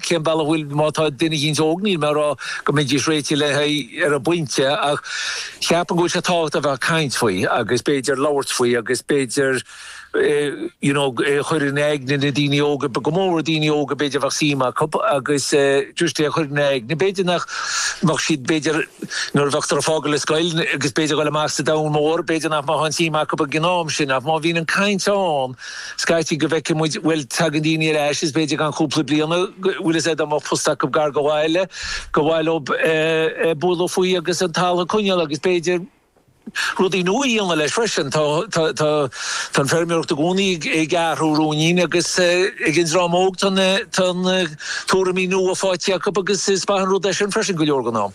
cén bealach a bhfuil, má tá duine éicint óg, níl mé ag rá go mbeidís réitithe le haghaidh, ar an bpointe, ach cheapaim go bhfuil sé tábhachtach a bheith ag caint faoi agus b'fhéidir labhairt faoi agus b'fhéidir you know é a chur in aigne na daoine óga, go mór daoine óga b'fhéidir a bheadh suim acub agus just é a chur ina aigne b'fhéidir nach mbeadh siad b'fhéidir nuair a bheifear ag fágáil an scoil agus b'fhéidir dul amach sa domhan mór b'fhéidir nach mbeadh an suim acu ag an am sin ach má bhíonn an caint ann Scaití go bhfeicfidh muid, bhuel, tagann daoine ar ais is b'fhéidir i gceann cúpla bliain, bhfuil fhios a'd dá mbeadh post acub gar do bhaile, go bhféadfadh leob eh, bualadh faoi agus an talamh a choinneáil agus b'fhéidir, rudaí nua a dhéanamh leis freisin. Tá, tá, tá, tá an feirmeoireacht i gcónaí ag, ag athrú ruainnín agus eh, ag an dream óg tá na, tá na tuairimí nua faighte acub agus is maith an rud é sin freisin go leor den am.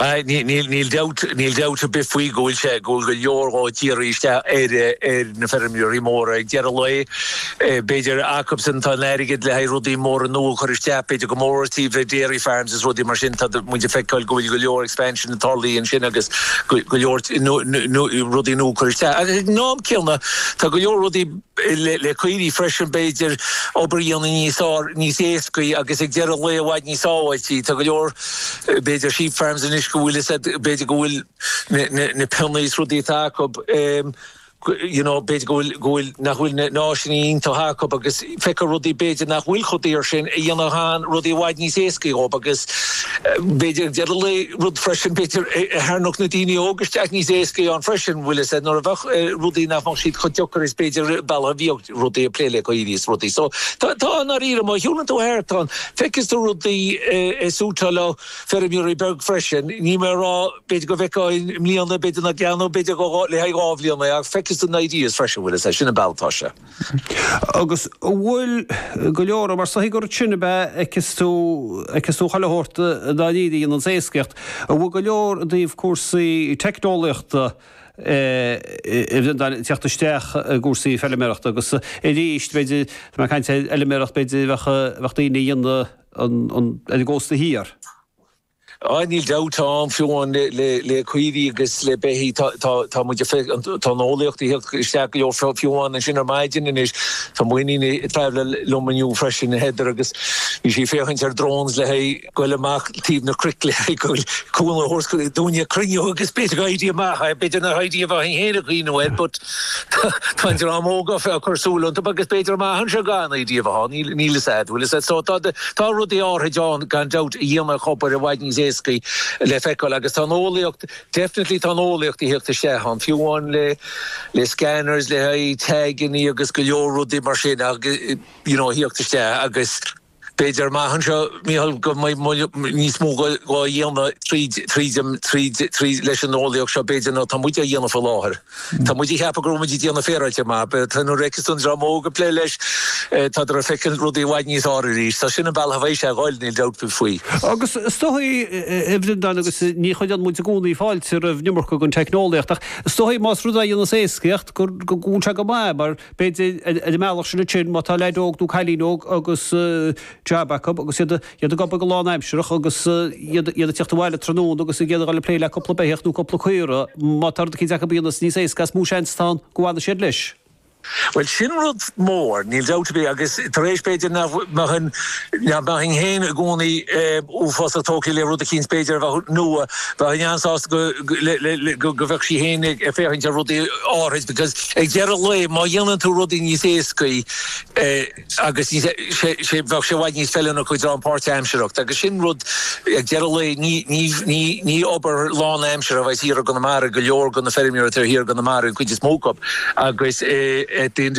Níl dabht, níl dabht ar bith faoi go bhfuil sé, go bhfuil go leor dhá dhíriú isteach ar ar na feirmeoirí móra ag deireadh lae. B'fhéidir acu sin atá an t-airgead le haghaidh rudaí móra nua a chur isteach, b'fhéidir go mór mór, b'fhéidir, dairy farms is rudaí mar sin, tá muid ag feiceáil go bhfuil go leor expansion ag tarlaí ansin agus go leor rudaí nua á gcur isteach. Agus ag an am céanna tá go leor rudaí, le caoirigh freisin, b'fhéidir, obair a dhéanamh níos fearr, níos éascaí agus ag deireadh an lae i bhfad níos sábháiltí. Tá go leor, b'fhéidir, sheep farms anois go bhfuil siad, b'fhéidir go bhfuil na peannaí is rudaí atá acub, you know, b'fhéidir go bhfuil, go bhfuil, nach bhfuil na áiseanna iontach acub agus feicfear rudaí b'fhéidir nach bhfuil chomh daor sin a dhéanfadh rudaí i bhfad níos éascaí dhób agus, B'fhéidir, ag deireadh an lae rud freisin, b'fhéidir, a tharrainneodh na daoine óga isteach níos éascaí ann freisin, bhfuil 'fhios a'd, nuair a bheadh rudaí nach mbeadh siad chomh deacair is b'fhéidir bealach a bhíodh rudaí ag plé le caoirigh is rudaí. So, tá, tá, i ndáiríre, má shiúlann tú thart ann, feicfidh tú rudaí a shúiteálfadh feirmeoirí beag freisin, níl mé ag rá, b'fhéidir go bhfeicfeá i mbliana, b'fhéidir nach dtearnódh, b'fhéidir go le haghaidh dhá bhliain é ach feicfidh tú na ideas freisin, bhfuil 'fhios a'd. Sin an bealach atá sé. Agus an bhfuil go leor, mar is dóichí gur ansin a fheicfeas tú, feicfidh tú chuile shórt dá ndéanann an éascaíocht, an bhfuil go leor i dtaobh cúrsaí teicneolaíochta ag tíocht isteach i gcúrsaí feiliméarachta agus arís, b'fhéidir, tá mé ag caint ar fheiliméaracht, b'fhéidir bheadh, bheadh daoine a dhéanamh an, an, ar an gcósta thiar. Ah, níl dabht ann, fiú amháin le caoirigh agus le beithígh, tá muid ag feic, tá an eolaíocht ag theacht isteach go leor, fiú amháin ansin ar maidin anois, tá mo iníon ag traibhleáil liom inniu freisin, Heather, agus bhí sí ag féachaint ar drones le haghaidh goil amach taobh na cnoic le haghaidh goil cúnamh a thabhairt dúinne cruinniú agus b'fhéidir go n-oibreodh sé amach, b'fhéidir nach n-oibreodh sé amach inné nó air but. Tá an dream óg ag cur súil iontub agus b'fhéidir a maitheann sé gan í riamh a shá. Níl, níl fhios a'd, bhfuil fhios a'd. So tá, tá rudaí áithrid ann gan dabht a dhéanfadh an obair i bhfad níos éascaí le feiceáil agus tá an eolaíocht, definitely tá an eolaíocht ag theacht isteach ann, fiú amháin le, le scanners le haghaidh taigeannaí agus go leor rudaí mar sin, you know, ag teacht isteach agus. B'fhéidir amach anseo, Mícheál, go mbeidh níos mó dhá dhéanamh tríd, tríd an, tríd, tríd, leis an eolaíocht seo b'fhéidir ná tá muid á dhéanamh faoi láthair. Tá muid ag ceapadh go raibh muid ag déanamh féaráilte maith ach, b'fhéidir, tá, nuair a fheiceas tú an dream óg ag plé leis, tádar ag feiceáil rudaí i bhfad níos fhearr arís. So sin an bealach a bheas sé ag goil, níl dabht ar bith faoi. Agus is dóichí, a Bhreandáin, agus ní chuireann muid i gcónaí fáilte roimh iomarca den teicneolaíocht, ach is dóichí, más rud a dhéanas éascaíocht, go bhfuil sé go maith, mar, B'fhéidir ar an mbealach sin ansin, má tá leaid óg nó cailín óg agus jab acu agus iad ag obair go lán-aimsearach agus iad ag tíocht abhaile tráthnóna agus iad ag dul ag plé le cúpla beithíoch nó cúpla caora, má tá rud eicínt acu a dhéanas níos éasca is mó seans atá ann go bhfanfaidh siad leis. Bhuel, sin rud mór, níl dabht ar bith, agus tar éis b'fhéidir nach mbeinn nach mbeinn féin i gcónaí uafásach tógtha le rud eicínt b'fhéidir a bheadh nua, bheinn an-sásta go bhfeicfinn féin ag féachaint ar rudaí áithrid because, Ag deireadh an lae, má dhéanann tú rudaí níos éascaí é agus níos, sé, sé, bheadh sé i bhfad níos feiliúnaí acu don pháirt-aimsearthacht agus sin rud, ag deireadh an lae, ní, ní, ní, ní obair lán-aimseartha a bheas thiar i gConamara, go leor de na feirmeoirí atá thiar i gConamara, an chuid is mó acu, agus at the end of the.